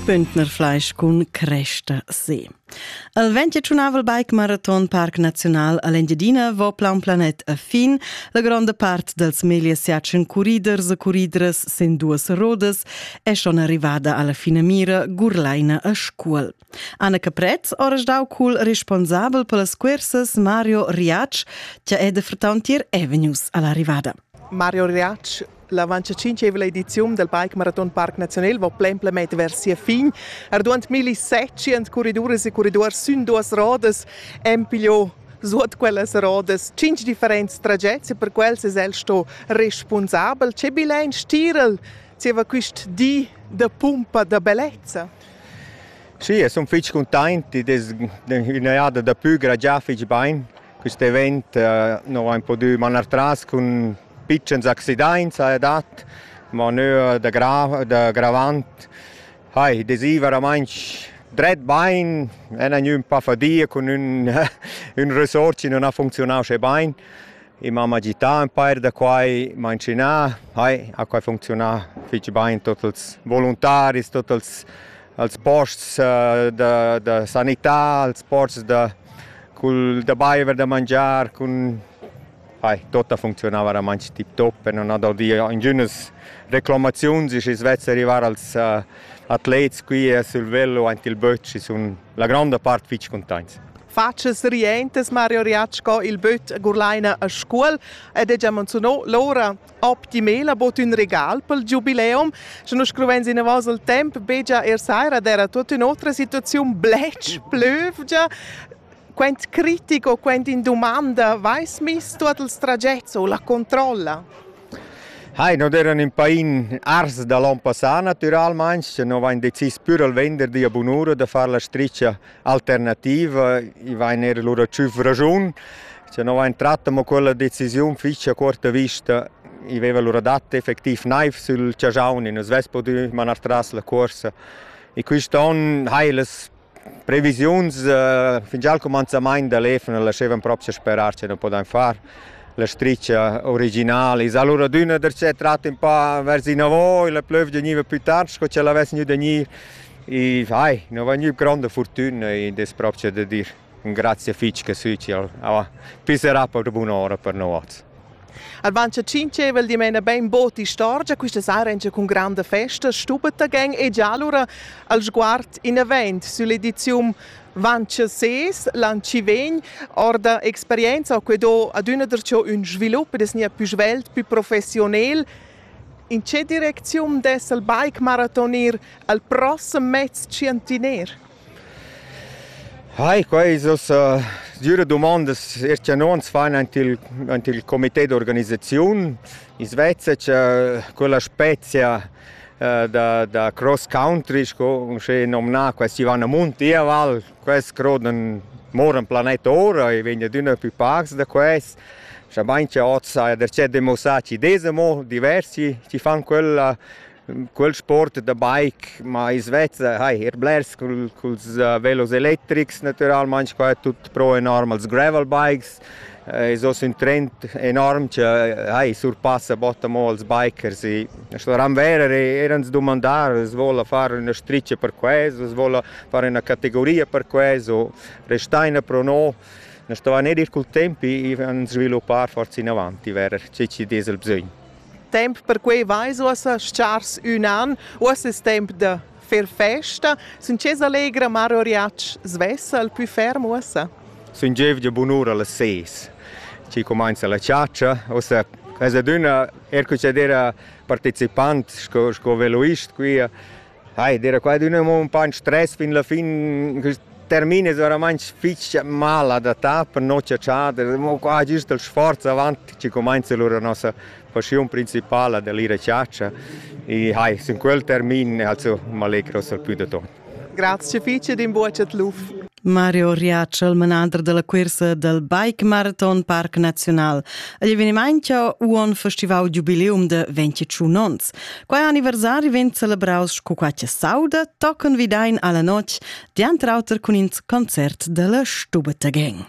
Bündner Fleisch cun cresta se. Al 25 Bike Marathon Parc Naziunal all'Engiadina vo plan planet a fin la gronda part dels megliers jatschen curriders e curridres sen duas rodas e schon arrivada alla fine mira Gurlaina a Scuol. Anna Capretz, ores dau cul responsabel per las cursas Mario Riac, che è de frauntier Avenues all'arrivada. Mario Riac L'avantcinqueivla ediziun dal Bike Marathon Parc Naziunal va plen planet vers sia fin. Arduant milli setschient corriduras e corridors sün duas rodas han pigliò suot quellas rodas cinc differents tragets e per quels es el sto responsabel. Che bilein stirel zieva quist di da pumpa da bellezza? Sì, e son fich cuntaint, id es üna jada da pü, già fich bain. Quist event nu vain pudü manar tras cun pitschens accidaints adat, ma nua da, gra da gravant hai desì veramainch dret bain, en ün ün pa fadia cun ün ün resort chi nun ha funcziunà usche bain. I m'ha agità ün pair da quai, m'ha inschinà, hai, ha quai funcziunà fich bain, tuot ils voluntaris, tuot els als posts eh, da, da sanità, als posts da, col, da baiver, da mangiar, cun Hai, tutta funzionava oramai tip top e non ha dal di ingünas reclamaziuns, schi svezza arrivar als uh, atlets qui eh, sul velo aint il böt, schi sun la gronda part fich contents. Faces rientes Mario Riacco il böt a Gurlaina a scuol ed è già menziunò l'ora optimela bod ün regal pel giubileum, sche nus scruvens inavous al temp begia er saira d'eira tuot ün'otra situaziun bletsch plövgia. Quant critic o quant in dumanda vais miss tuot ils tragets o la controlla? Hai, non eran in pain ars da l'on passà natüralmaing, sche no vain decis pür al vender dia bunura da far la stricha alternativa, i vain eir lura tschüf raschun. Scha no vain tratta mo quella decisiun fich a cuorta vista, i veiva lura dat effectiv naiv sül chajaun, i nu svess pudü manar tras la cuorsa. E quist on hai las previsiuns fingià al cumanzamaint da l'EFN lascevan propcha sperar cha nu podain far la stricha originala. I s'ha lura adüna darchè trat ün pa vers inavo, la plövgia gniva plü tard sco cha l'avess gnü da gnir. I vai, no vain gnü gronda furtüna in das propcha da dir grazia fich che sü ch'el pisserà per bun'ora per noats. Albancha tschintscheva il dimena ben bod istorgia quista sarengia cun granda festa, stubetta gen e già allura al sguard in event süll'ediziun Vancia ses, l'an ci vegn, orda experienza ho que do ad üna der ün svilup des nia pü svelt, pü professionel, In tge direcziun dess el bike maratonir al prossem mez tschientiner? Ai, quai es ussa düra dumondas er cha non s'fan ant il, ant il comitè d'organisaziun. Ins vezza cha quella spezia da, da cross country, sco uschè nomnà, questa Ivana Munti, val Quest croden moran planet ora e vegna d'üna pü pacs da quest. Schamain che hoz saja darcheu demuossà chi desa mo diversi chi fan quella quel sport da bike, ma i svezza, hai, er blers cul, culs uh, velos electrics, natüralmaing qua tut pro e norm als gravel bikes. Es hoz ün trend enorm cha ai surpassa bot amo als bikers e sco ram verer eirans dumandar, as voula far üna stricia per quest, as voula far üna categoria per quest o restaina pro no. Na stovan eir ir cul temp e an sviluppar forsa inavant i verer che chi'd es il bsögn. Temp per quai vais uossa s-chars ün an, uossa es temp da fer festa, sun chesa allegra mar oriatsch svessa al pü ferm uossa. Sun gievgia bunura las ses. Ci cumainza la ciaccia, uossa es adüna er cu c'è d'era participant sco, sco veloist qui. Hai, d'era qua adüna un po' in stress fin la fin, que termines oramai fich mal adattà per nossa chada, mo qua giust il sforz avant ci cumainza lura nossa passiun principala dell'ira chatscha e hai sin quel termin also m'allegros al più da tot. Grazie fice din bucet luf. Mario Riaccio, il manader della cursa del Bike Marathon Parc Nazional. Agli avvenimento un festival jubileum de 21 ons. Quai anniversari vegn celebraus cu qualche sauda, tochen vidain alla notg, diantr auter cun in concert della Stubete Gang.